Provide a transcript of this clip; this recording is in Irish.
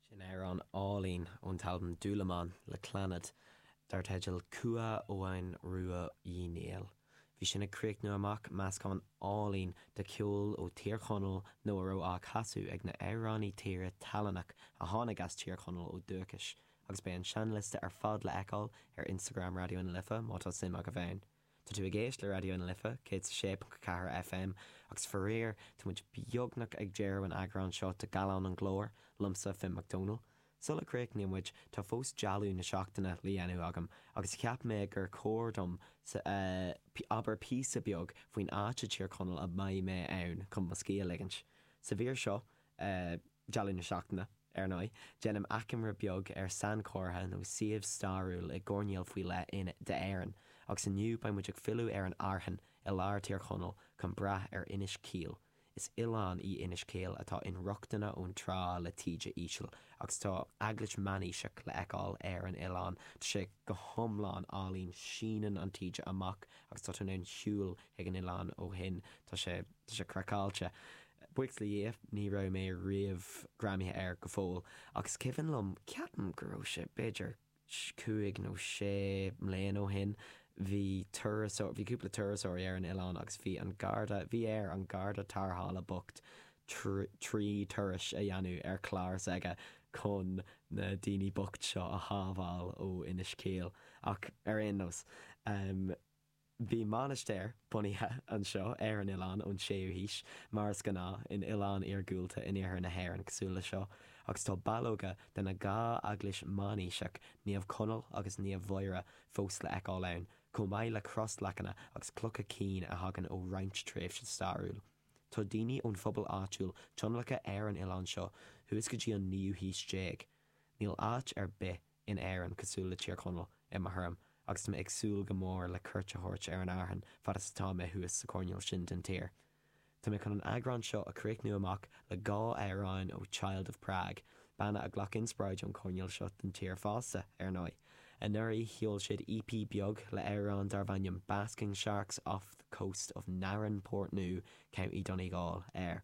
Sin amhrán álainn ón t-albam Dúlamán le Clannad dar teideal Cumha Eoghain Ruaidh Uí Néill. Bhí sin ag críochnú amach meascán álainn de cheol ó Thír Chonaill nó a raibh á chasadh ag na hamhránaí tíre tallannach a tháinig as Tír Chonaill ó dúchais agus beidh an seinnliosta ar fad le fheiceáil ar Instagram Raidió na Life má tá suim agaibh ann. Tá tú ag éist le Raidió na Life 106.4 FM agus faraor tá muid beagnach ag deireadh an eagráin seo de Gallán an Ghlóir liomsa, Finn Mac Dónaill. Sula gcríochnaíonn muid tá fós Dialann na seachtaine le dhéanamh agam agus cheap mé gur chóir dom abair píosa beag faoin áit i dTír Chonaill a mbeidh mé ann chun mo scíth a ligint. Sa mhír seo, Dialann na Seachtaine. Ar ndóigh, déanaim achoimre beag ar sainchomhartha nó suíomh stairiúil i gcoirnéal faoi leith d'Éirinn, agus inniu beidh muid ag filleadh ar an Airtheann i lár Thír Chonaill chun breathnú ar Inis Caoil. Is oileán í Inis Caoil atá inrochtana ón trá le taoide íseal agus tá eaglais meánaoiseach le feiceáil ar an oileán. Tá sé go hiomlán álainn, síneann an taoide amach agus tá tú in ann siúl chuig an oileán ó shin. Tá sé, tá sé craiceáilte. Buíochas le Dia, ní raibh mé riamh greamaithe air go fóill, ach is cuimhin liom, ceapaim go raibh sé b'fhéidir cúig nó sé mbliana ó shin, bhí turasóir, bhí cúpla turasóirí ar an oileán agus bhí an garda, bhí air an garda tarrthála bocht trí turais a dhéanamh ar chlár s'aige chun na daoine bocht seo a shábháil ó Inis Caoil, ach ar aon nós. Bhí mainistir bunaithe anseo ar an oileán ón 6ú haois, mar is gnáth in oileáin iargúlta in iarthar na hÉireann cosúil leis seo, agus tá ballóga de na dhá eaglais mheánaoiseach, Naomh Conall agus Naomh Mhuire, fós le fheiceáil ann, chomh maith le crosleacanna agus clocha cinn a thagann ó roinnt tréimhse stairiúil. Tá daoine ón phobal áitiúil adhlactha ar an oileán seo thuas go dtí an naoú haois déag. Níl áit ar bith in Éirinn, cosúil le Tír Chonaill, i mo thuairim, agus tá mé ag súil go mór le cuairt a thabhairt ar an Airthean fad is atá mé thuas sa choirnéal sin den tír. Tá mé chun an eagrán seo a chríochnú amach le dhá amhráin ó Child of Prague, banna a ghlac inspioráid ón choirnéal seo den tír fosta, ar ndóigh. Anuraidh, sheol siad EP beag le amhrán darbh ainm Basking Sharks Off the Coast of Narin, Portnoo, County Donegal, air.